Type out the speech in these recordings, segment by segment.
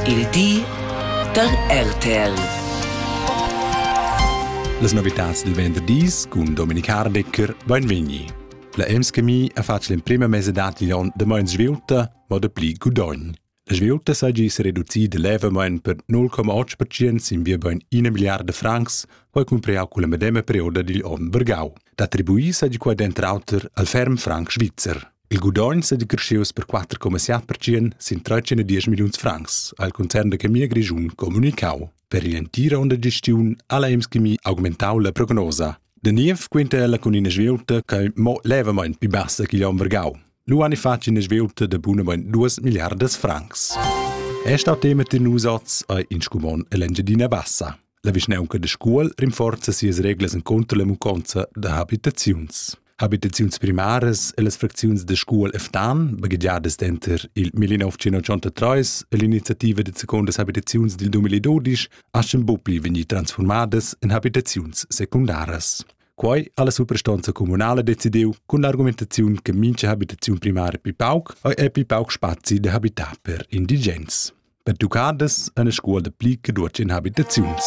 Il di da RTL. Las novitads dil venderdis cun Dominik Hardecker beinvegni. La EMSCMI ha fatg l'emprema mesa dad igl onn da meins sviulta, mo da pli gudogn. La sviulta seigi sereducida levamein per 0,8% sin via bein ina miliarda francs, quei cumpriau culla medema perioda digl onn vargau. D'attribuir seigi quei denter auter al ferm franc svizzer. Il gudogn è decreschius per 4,7 percent sin 13 milliuns francs, ha il concern da chemia grischun comunicau. Per l'entira onda gestiun ha la Emschemie augmentau la prognosa. De niev quinta la con ina svieuta che mo levemein più bassa che Jan Vergau. Lu han fatg ina svieuta de bunamein 2 miliardas francs. È stato tema den Usatz a in scumon L'Engiadina Bassa. La vischnaunca da Scuol rinforza sias reglas encunter la munconza da habitaziuns. Habitaziuns primaras e las fracziuns da Scuol e Ftan, baghegiadas denter il 1983 e l'iniziativa de secondas habitaziuns dil 2012, aschen bupi vegni transformadas en habitaziuns secundaras. Quai ha la suprastanza comunala decidiu cun l'argumentaziun che mincha habitaziun primara pi pauc ha e pi pauc spazi da habitar per indigens. Pertuccadas en scuola pli che duas habitaziuns.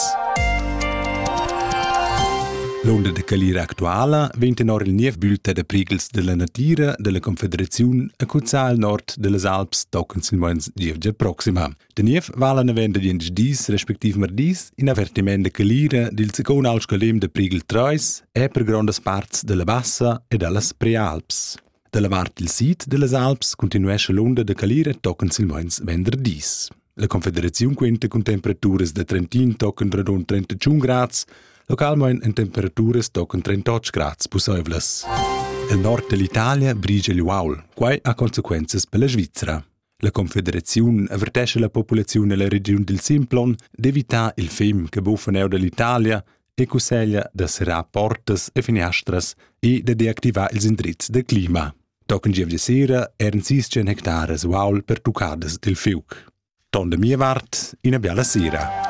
L'onda da calira actuala vegn tenor il niev bulta da prighels della natira della Confederazione a cuzzar al nord dellas Alps tochen silmeins gievgia proxima. Der Niev vala navenda diensch dis respektiv mardis in avertiment da calira dil secon alscolem da prigel 3 e per grondas parts della bassa e dallas Prealps. Da la vart il sid dellas Alps continuescha l'unda da calira tochen silmeins venderdis. La Confederaziun quenta cun temperaturas da 31 tochen radund 31 grads, localmein en temperaturas tochen 38 grads pusseivlas. Il nord dell'Italia brigia il uaul, quai ha consequenzas per la Svizzera. La confederaziun avertescha la populaziun ella regiun dil Simplon d'evitar il fim che buffan er dall'Italia e cusseglia da serrar portas e finiastras e da deactivar ils indrizs da clima. Tochen gievgia sera eran sis hectares uaul pertuccadas dil fiuc. Ton da mia vart, ina biala sera.